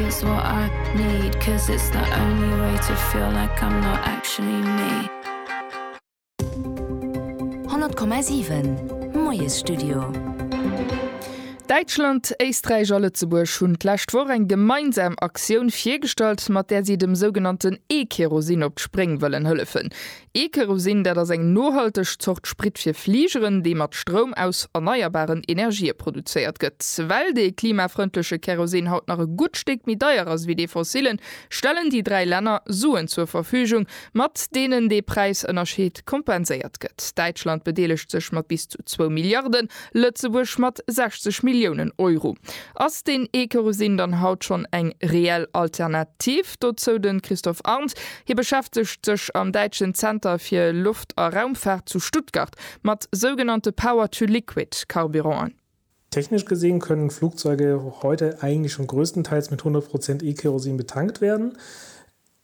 It's what I need, 'cause it's the only way to feel like I'm not actually me. 100,7 Moiesstudio. Däitschland, Éisträich a Lëtzebuerg hunn d'lescht Woch eng gemeinsam Aktioun virgestallt, mat där si dem sougenannten E-Kerosin op d'Spréng wëllen hëllefen. E-Kerosin, dat ass eng nohalteg Zort Sprit fir Fligeren, dee mat Stroum aus erneierbaren Energië produzéiert gëtt. Well dee klimafrëndleche Kerosin haut nach e gutt Stéck méi deier ass wéi dee fossillen, stellen déi dräi Länner Suen zur Verfügung, mat deenen dee Präisënnerscheed kompenséiert gëtt. Däitschland bedeelegt sech mat bis zu zwou Milliarden Lëtzebuerg mat 60 Milliounen Euro. Ass deen E-Kerosin dann haut schonn eng reell Alternativ? Dozou de Christophe Arndt. Hie beschäftegt sech am däitschen Zenter fir Loft a Raumfaart zu Stuttgart mat sougenannte Power-to-Liquid Carburanten. Technisch gesehen können Flugzeuge heute eigentlich schon größtenteils mit 100 Prozent E-Kerosin betankt werden.